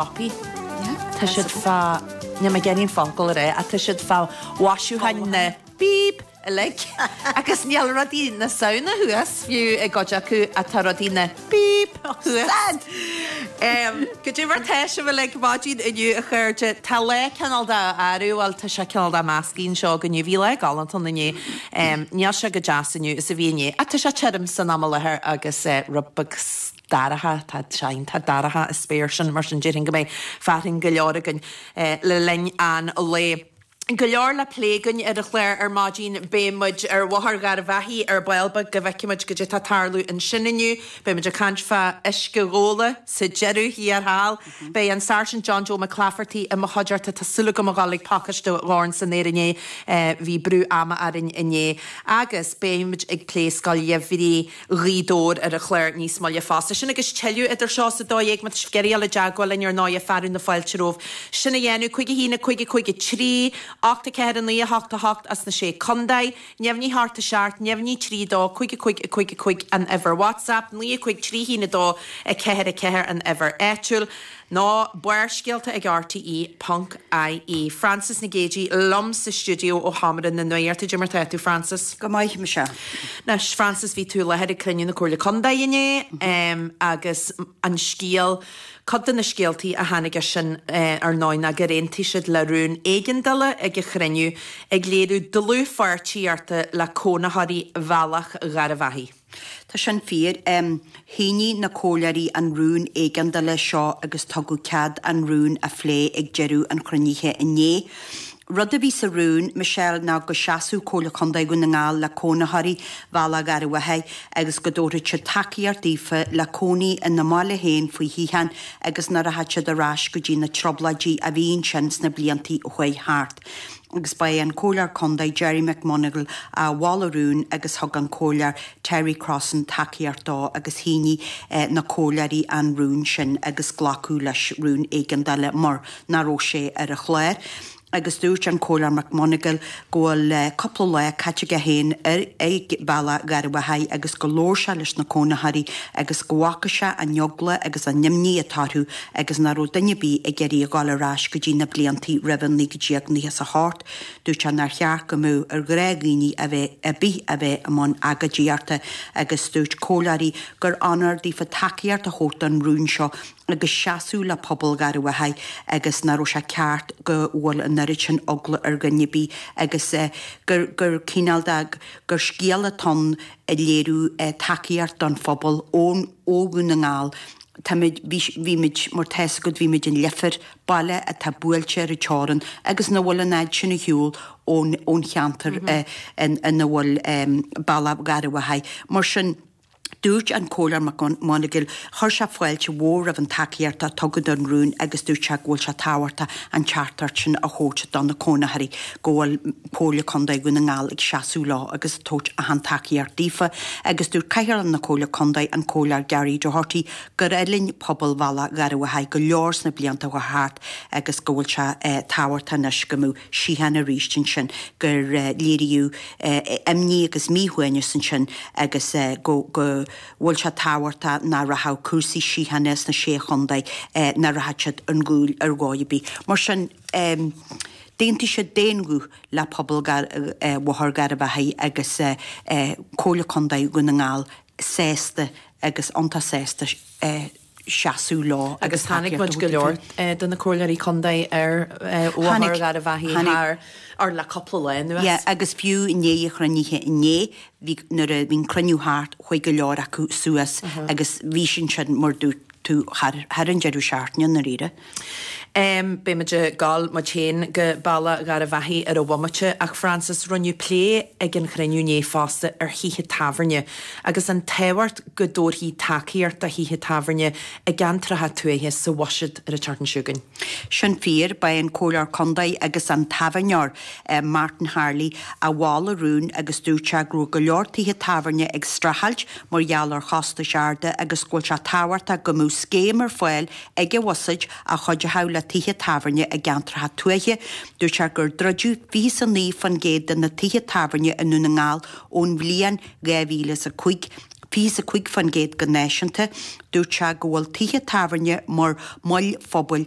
Copy. Tá siad fá, níl mé ag iarraidh an focal a rá, ach tá siad fá mhaisiúcháin na, beep, uilig agus níl rudaí na Samhna thuas fiú i gcuid acu ach tá rudaí na, beep, thuas. Sad! Em, cad é mar atá sibh uilig ar maidin inniu a chairde, tá lá cineál de, arú, bhuel tá sé cineál de measctha anseo againn inniu, bhí lá galánta ann inné, em, níl sé chomh deas inniu is a bhí inné ach tá sé tirim san am i láthair agus eh, rud beag. dorcha, tá dreach, tá dorcha an spéir sin, mar sin déarfainn go mbeidh fearthainn go leor againn le linn an lae. Go leor le plé againn ar an chlár ar maidin, beidh muid ar Bhóthar Gharbhachaidh ar ball beag go bhfeicfidh muid cad é tá tarlú ansin inniu, beidh muid ag caint fá uisce Ghabhla sa deireadh thiar thall, beidh an Sáirsint John Joe McClafferty i mo chuideachta, tá súil agam a dhul ag pacáiste ó dhorn san aer inné, bhí brú ama orainn inné, agus beidh muid ag plé Scoil Gheimhridh. Ghaoth Dobhair ar an chlár níos moille fosta. Sin agus tuilleadh idir seo is a dó dhéag, má tá sibh ag iarraidh dul i dteagmháil linn ar ndóigh, fearadh na fáilte romhaibh sin a dhéanamh. Cúig a haon, a cúig, a cúig a trí, ocht a ceathair, a naoi a hocht, a hocht as na sé contae. Neamhní a hocht a seacht, neamhní trí a dó, cúig a cúig, a cúig a cúig an uimhir WhatsApp, naoi a cúig trí haon a dó a ceathair a ceathair an uimhir áitiúil. Nó barrscéalta ag RTÉ.ie. Frances Nic Géadaigh liom sa stiúideo ó sheomra na nuachta. Cad é mar atá tú Frances? Go maith Michelle. Anois Frances bhí tú i láthair ag cruinniú na Comhairle Contae inné agus an scéal, cuid de na scéaltaí a tháinig as sin ar ndóigh ná gur aontaigh siad le rún éigeandála ag an chruinniú ag léiriú dlúthpháirtíochta le cónaitheoirí Bhealach Gharbhachaidh. Tá sin fíor. Shínigh na Comhairleoirí an rún éigeandála seo agus tugadh cead an rún a phlé ag deireadh an chruinnithe inné. Rud a bhí sa rún, Michelle, ná go seasfadh Comhairle Contae Dhún na nGall le cónaitheoirí Bhealach Gharbhachaidh agus go dtabharfadh siad tacaíocht daofa le cónaí ina mbaile féin faoi shíocháin agus nach rachadh siad ar ais go dtí na Trioblóidí a bhí ansin sna blianta a chuaigh thart. agus ba é an Comhairleoir Contae Gerry McMonagle a mhol an rún agus thug an Comhairleoir Terry Crossan tacaíocht dó agus shínigh na Comhairleoirí an rún sin agus glacadh leis rún éigeandála mar nach raibh sé ar an chlár agus dúirt an Comhairleoir McMonagle go bhfuil cúpla lá caite aige féin ag Bealach Gharbhachaidh agus gur labhair sé leis na cónaitheoirí agus go bhfaca sé an eagla agus an imní atá orthu agus nach raibh duine ar bith ag iarraidh a ghabháil ar ais go dtí na blianta roimh 1998, dúirt sé nár cheart go mbeadh ar ghrá dhaoine ar bith a bheith i mbun agóidíochta agus dúirt comhairleoirí gur onóir daofa tacaíocht a thabhairt don rún seo agus seasamh le pobal Gharbhachaidh agus nach raibh sé ceart go bhfuil an oiread sin eagla ar dhuine ar bith agus gur cineál de, gur scéala atá ann ag léiriú tacaíocht don phobal ó Dhún na nGall. Táimid, bhí, bhí muid, mar tá a fhios agat bhí muid in Leifear, baile atá buailte ar an teorann agus nach bhfuil an fhad sin ar shiúl ón, ón cheantar i, in, ina bhfuil Bealach Gharbh Achaidh. Mar sin, dúirt an Comhairleoir McMonagle, chuir sé fáilte mhór roimh an tacaíocht a tugadh don rún agus dúirt sé go bhfuil sé tábhachtach an teachtaireacht sin a thabhairt do na cónaitheoirí go bhfuil, Comhairle Contae Dhún na nGall ag seasamh leo agus ag tabhairt achan tacaíocht daofa agus dúirt Cathaoirleach na Comhairle Contae, an Comhairleoir Gary Doherty, gur fhulaing pobal Bhealach Gharbh Achaidh go leor sna blianta atá thart agus go bhfuil sé tábhachtach anois go mbeadh síocháin arís ansin, gur léiríodh imní agus míshuaimhneas ansin agus go bhfuil sé tábhachtach nach rachadh cúrsaí síochána sna Sé Chontae, nach rachadh siad ar gcúl ar dhóigh ar bith. Mar sin. D'aontaigh siad d'aon ghuth le pobal Bhóthar Gharbh Achaidh agus Comhairle Contae Dhún na nGall sásta agus iontach sásta seasamh leo agus tacaíocht a thabhairt dóibh. Agus chonaic muid go leor de na Comhairleoirí Contae ar Bhóthar Gharbh Achaidh thar fhor le cúpla lá anuas. Yes, agus fiú i ndiaidh an chruinnithe inné, bhí, nuair a bhí an cruinniú thart, chuaigh go leor acu suas agus bhí siad ansin mar a dúirt tú thar an deireadh seachtaine i ndáiríre. M, Beimid ag gabháil muid féin go Bealach Gharbh Achaidh ar an bhomaite, ach Francis, rinneadh plé ag an chruinniú inné fosta ar thithe tábhairne agus an tábhacht go dtabharfaí tacaíocht do thithe tábhairne i gceantracha tuaithe sa bhuiséad ar an tseachtain seo chugainn. Sin fíor, ba é an Comhairleoir Contae agus an tábhairneoir Martin Harley a mhol an rún agus dúirt sé go raibh go leor tithe tábhairne ag streachailt mar gheall ar chostais arda agus go bhfuil sé tábhachtach go mbeadh scéim ar fáil ag an bhuiséad a chuideodh le tithe tábhairne i gceantracha tuaithe, dúirt sé gur druideadh 29% de na tithe tábhairne i nDún na nGall ón bhliain 2005, 25% go náisiúnta. Dúirt sé go bhfuil tithe tábhairne mar moil phobail